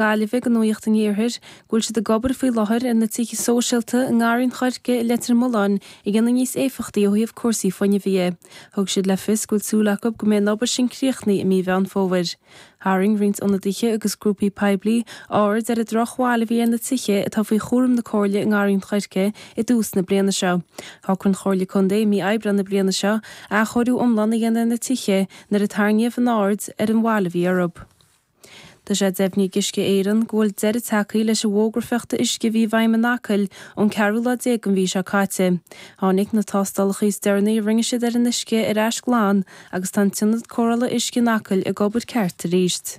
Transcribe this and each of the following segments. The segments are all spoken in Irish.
Gaillimhe go Nuaíocht an Iarthair go bhfuil siad ag obair faoi láthair ar na tithe sóisialta i nGarraí an Choirce i Leitir Mealláin a dhéanamh níos éifeachtaí ó thaobh cúrsaí fuinnimh dhe. Thug siad le fios go bhfuil súil acu go mbeidh an obair sin críochnaithe i mí Mheán Fómhair. Tharraing roinnt ionadaithe agus grúpaí poiblí aird ar an drochbhail a bhí ar na tithe atá faoi chúram na Comhairle i nGarraí an Choirce i dtús na bliana seo. Shocraigh an Chomhairle Contae i mí Aibreán na bliana seo athchóiriú iomlán a dhéanamh ar na tithe nuair a tarraingíodh an aird ar an bhail a bhí orthu. Tá sé deimhnithe ag Uisce Éireann go bhfuil deireadh tagtha leis an bhfógra fiuchta uisce a bhí i bhfeidhm in Acaill ón ceathrú lá déag den mhí seo caite. Tháinig na tástálacha is deireanaí a rinne siad ar an uisce ar ais glan agus tá an t-ionad cóireála uisce in Acaill ag obair ceart arís.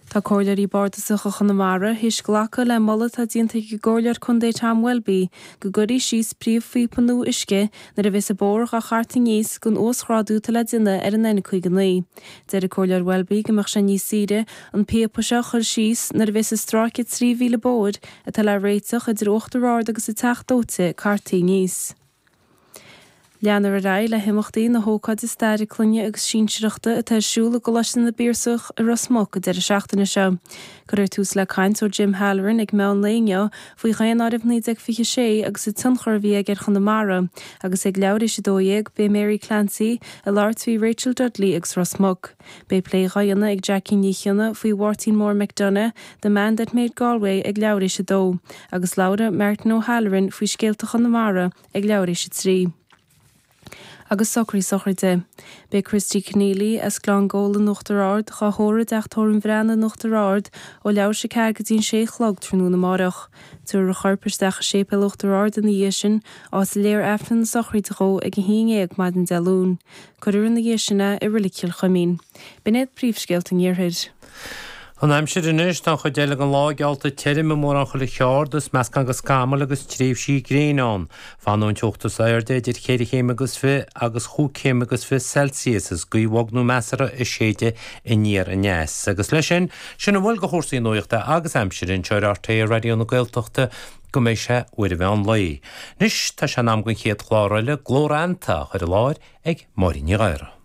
Tá Comhairleoirí Bardasacha Chonamara théis glacadh le moladh atá déanta ag an gComhairleoir Contae Tom Welby go gcuirfí síos príomhphíopa nua uisce nuair a bheas an bóthar dhá chartadh aníos don uasghrádú atá le déanamh ar an N59. Deir an Comhairleoir Welby go mbeadh sé níos saoire an píopa seo a chur síos nuair a bheas an stráice 3 mhíle bóthair atá le réiteach idir Uachtar Ard agus an Teach Dóite cartaí aníos. Leanfar ar aghaidh le himeachtaí na hócáide staire clainne agus sinsearachta atá ar siúl i gColáiste na bPiarsach i Ros Muc an deireadh seachtaine seo. Cuirfear tús le caint ó Jim Halloran ag meán lae inniu faoi Dhaonáireamh 1926 agus an tionchar a bhí aige ar Chonamara, agus ag leathuair théis a 12, beidh Mary Clancy ag labhairt faoi Rachel Dudley agus Ros Muc. Beidh plé dhá dhéanamh ag Jackie Ní Chionna faoi Mháirtín Mór McDonagh, the man that made Galway ag leathuair théis a 2, agus labhróidh Martin O'Halloran faoi scéalta Chonamara ag leathuair théis a 3. Agus socruithe sochraide. Beidh Christy Conneely as Gleann Gabhla in Uachtar Ard dhá thórramh i dteach tórraimh an Bhreathnaigh in Uachtar Ard ó leathuair théis a ceathair go dtí an sé a chlog tráthnóna amáireach. Tabharfar a chorp isteach i Séipéal Uachtar Ard ina dhiaidh sin, áit a léifear Aifreann na sochraide dhó ag a haon ndéag maidin Dé Luain. Cuirfear ina dhiaidh sin é i Reilig Chill Chuimín. B'in iad príomhscéalta an Iarthair. An aimsir anois, tá an chuid eile den lá geallta tirim i mórán chuile cheard, is meascán de scamaill agus tréimhsí gréine ann. Fanfaidh an teocht is airde idir cheithre chéim agus fiche agus chúig chéim agus fiche Celsius, is gaoth bhog nó measartha ag séideadh aniar aneas. Agus leis sin, sin a bhfuil de chúrsaí nuachta agus aimsire anseo ar RTÉ Raidió na Gaeltachta go mbeidh sé uair an mheán lae. Anois, tá sé in am don chéad chlár eile, Glóranta, á chur i láthair ag Máirín Ní Ghadhra.